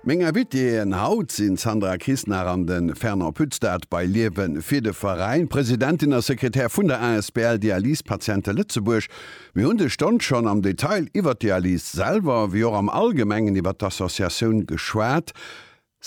Meng Invitéeën haut sinn d'Sandra Krisnach an de Fernand Pütz-Daert bei Liewe fir de Veräin, Presidentin a Sekretär vun der Asbl Dialysepatiente Lëtzebuerg. Mir hunn dës Stonn schonn am Detail iwwert d'Dialyse selwer, wéi och am Allgemengen iwwert d'Associatioun geschwat.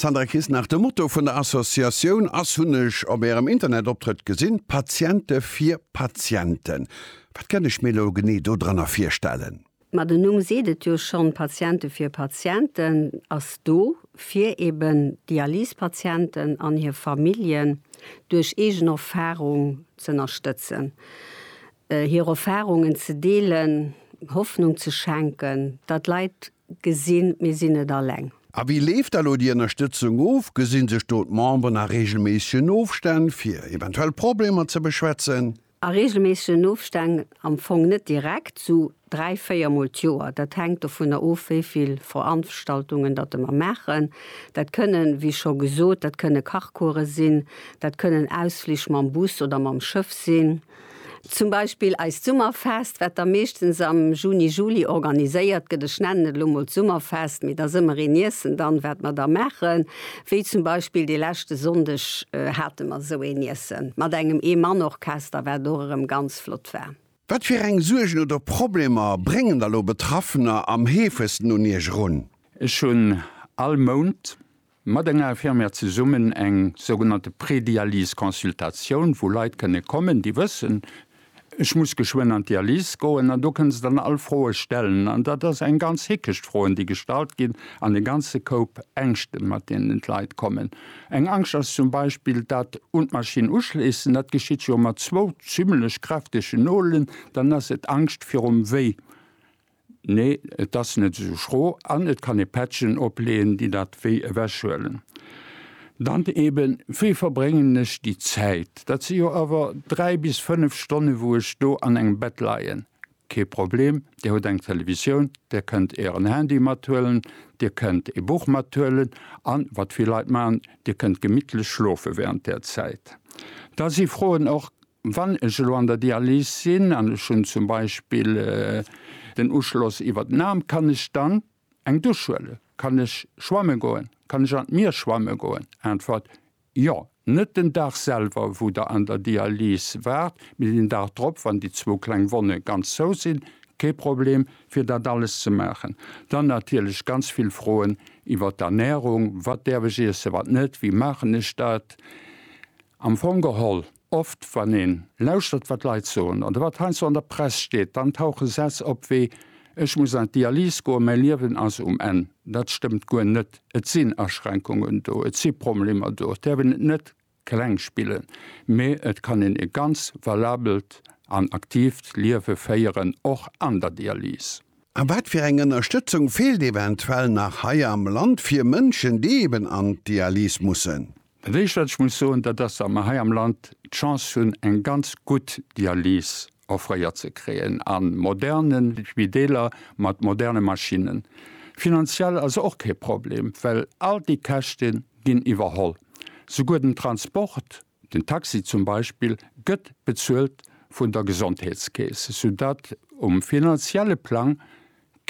Sandra Kisnach, De Motto vun der Associatioun ass, hunn ech op Ärem Internetoptrëtt gesinn, Patiente fir Patienten. Wat kënn ech mir elo genee do dranner virstellen? Ma den Numm seet et jo schonn, Patiente fir Patienten ass do fir eben Dialysepatienten an hir Familljen duerch eegen Erfarung z'ënnerstëtzen, hir Erfarungen ze deelen, Hoffnung ze schenken, datt Leit Gesinn, mir sinn net alleng. A wéi leeft da lo déi Ënnerstëtzung of? Gesi sech do d'Memberen a reegelméissegen Ofstänn, fir eventuell Problemer ze beschwätzen? A reegelméissegen Ofstänn am Fong net direkt, esou dräi, véier Mol d'Joer. Dat hänkt dovunner of, wéi vill Veranstaltungen datt e mer maachen. Dat kënnen, wéi scho gesot, dat kënne Kachcourse sinn, dat kënnen Ausflich mam Bus oder mam Schëff sinn. Zum Beispill eist Summerfest, wat da meeschtens am Juni, Juli organiséiert gëtt. Ech nennen et elo mol d'Summerfest, mee da si mer een Iessen dann, wat mer da maachen. Wéi zum Beispill de leschte Sonndeg hate mer esou een Iessen, mat engem Eemannorchester, wat och erëm ganz flott war. Wat fir eng Suergen oder Problemer bréngen da lo Betraffener am heefegsten un Iech erun? Ech hunn all Mount mat enger Infirmière zesummen eng sougenannte Prédialyse-Consultatioun, wou Leit kënne kommen, déi wëssen, ech muss geschwënn an d'Dialyse goen, an do kënne se dann all Froe stellen. An dat ass eng ganz Hickecht, Froen, déi gestallt ginn, an e ganze Koup Ängschten, mat deenen d'Leit kommen. Eng Angscht ass zum Beispill dat un d'Maschinn uschléissen. Dat geschitt jo mat zwou zimlech kräftege Nolen. Dann ass et Angscht virum Wéi. Nee, et ass net esou schro an et kann ee Patchen opleeën, déi dat Wéi ewechhuelen. Dann eben, wéi verbréngen ech déi Zäit? Dat si jo awer dräi bis fënnef Stonne wou ech do an engem Bett leien. Kee Problem, Dir hutt eng Televisioun, Dir kënnt Ären Handy mathuelen, Dir kënnt ee Buch mathuelen an, wat vill Leit maachen, Dir kënnt gemittlech schlofe während där Zäit. Da si Froen och, Wann ech elo an der Dialys sinn an ech hunn zum Beispill den Uschloss iwwer den Aarm, kann ech dann eng Dusch huelen? Kann ech schwamme goen? Kann ech an d'Mier schwamme goen? Äntwert, Jo. Net den Dag selwer, wou Der an der Dialys waart, mee den Dag drop, wann déi zwou kleng Wonne ganz zou sinn, kee Problem, fir dat alles ze maachen. Dann natierlech ganz vill Froen iwwer d'Ernärung, Wat däerf ech iessen, wat net? Wéi maachen ech dat? Am Fong geholl Oft wann een lauschtert wat Leit soen oder wat heiansdo an der Press steet, dann tauche Sätz op wéi, Ech muss an d'Dialyse goen, mäi Liewen ass um Enn. Dat stëmmt guer net. Et sinn Aschränkungen do, et si Problemer do, et däerf een et net kleng spillen, mee et kann een e ganz valabelt an aktiivt Liewe féieren, och an der Dialyse. A wat fir eng Ënnerstëtzung feelt eventuell nach hei am Land fir Mënschen, déi eben an d'Dialyse mussen? Dat éischt wat ech muss soen, dat ass, datt mer hei am Land d'Chance hunn eng ganz gutt Dialyse offréiert ze kréien a moderne Spideeler mat moderne Maschinnen. Finanziell ass och kee Problem, well all déi Käschte ginn iwwerholl. Souguer den Transport, den Taxi zum Beispill, gëtt bezuelt vun der Gesondheetskeess, soudatt um finanzielle Plang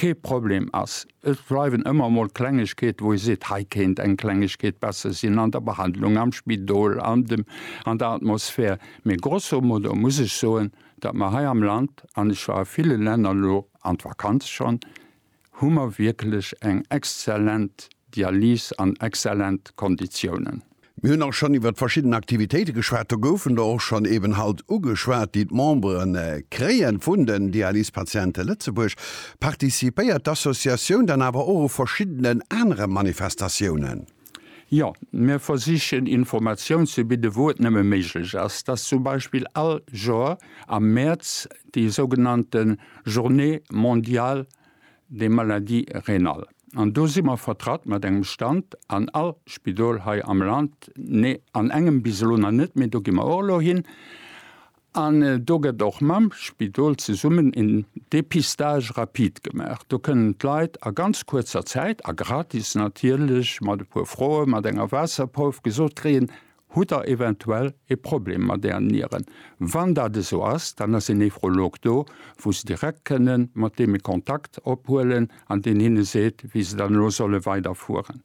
Kee Problem, ass. Et bleiwen ëmmer emol Klengegkeete wou ee seet, hei kéint eng Klengegkeet besser sinn an der Behandlung, am Spidol, an dem, an der Atmosphär. Mee grosso modo muss ech soen, datt mer hei am Land, an ech war a ville Länner elo an d'Vakanz schonn, hu mer wierklech eng exzellent Dialyse an exzellent Konditiounen. Mir hunn och schonn iwwert verschidden Aktivitéite geschwat. Do goufen der och schonn eben haut ugeschwat, déi d'Membere kréie vun den Dialysepatiente Lëtzebuerg. Participéiert d'Associatioun dann awer och u verschiddenen anere Manifestatiounen? Jo, mir versichen Informatioun ze bidde wou et nëmme méiglech ass. Et ass zum Beispill all Joer am Mäerz déi sougenannte Journée mondiale des maladies rénales. An do si mer vertratt mat engem Stand an all Spidol hei am Land, nee, an engem bis elo nach net, mee do gi mer och elo hin. An do gëtt och mam Spidol zesummen een Dépistage rapide gemaach. Do kënnen d'Leit a ganz kuerzer Zäit, a gratis natierlech, mat e puer Froe, mat enger Waasserprouf gesot kréien, Hutt der eventuell e Problem mat ären Nieren? Wann dat esou ass, dann ass en Nephrolog do, wou se direkt kënne mat deene Kontakt ophuelen an deen hinne seet, wéi se dann elo solle weiderfueren.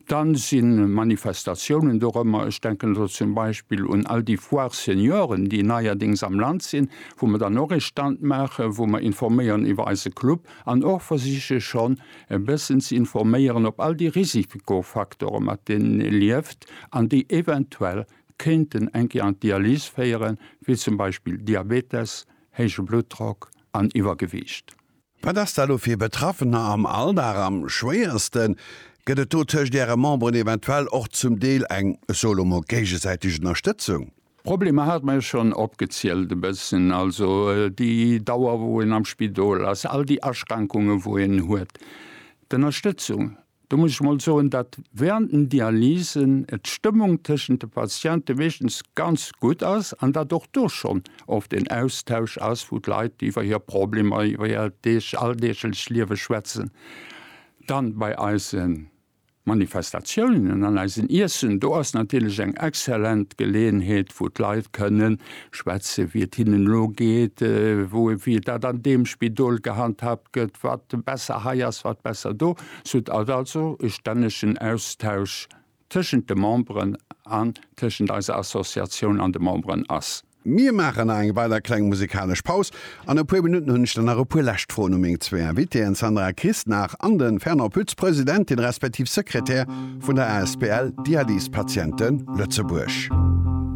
Da si Manifestatiounen dorëmmer, ech denken elo zum Beispill un all déi Foires Senioren, déi neierdings am Land sinn, wou mer dann och ee Stand maachen, wou mer informéieren iwwer eise Club an och versiche schonn, e bëssen ze informéieren op all déi Risikofaktore mat deenen ee lieft an déi eventuell kéinten eng Kéier an d'Dialyse féieren, wéi zum Beispill Diabetes, héije Bluttdrock an Iwwergewiicht. Wat ass da lo fir Betraffener am Alldag am schwéiersten? Gëtt et do tëscht Äre Memberen eventuell och zum Deel eng, ech soe lo mol, géigesäiteg Ënnerstëtzung? D'Problemer hat mer jo schonn opgezielt e bëssen, also déi Dauer wou een am Spidol ass, all déi Aschränkunge wou een huet. D'Ënnerstëtzung, do muss ech mol soen, datt während den Dialysen d'Stëmmung tëschent de Patiente meeschtens ganz gutt ass an datt och do schonn oft en Austausch ass, wou d'Leit iwwer hir Problemer, iwwer hiert alldeeglech Liewe schwätzen. Dann bei eisen Manifestatiounen an eisen Iessen, do ass natierlech eng exzellent Geleeënheet, wou d'Leit kënne schwätze wéi et hinnen elo geet, wou wéi dat an deem Spidol gehandhaabt gëtt, wat besser hei ass, wat besser do. Et ass also e stännegen Austausch tëschent de Memberen an tëschent eiser Associatioun an de Memberen ass. Mir maachen nach eng weider kleng musikalesch Paus. An e puer Minutten hunn ech dann nach e puer lescht Froen u meng zwee Invitéen, d'Sandra Christnach an de Fernand Pütz, Presidentin respektiv Sekretär vun der asbl Dialyse Patiente Lëtzebuerg.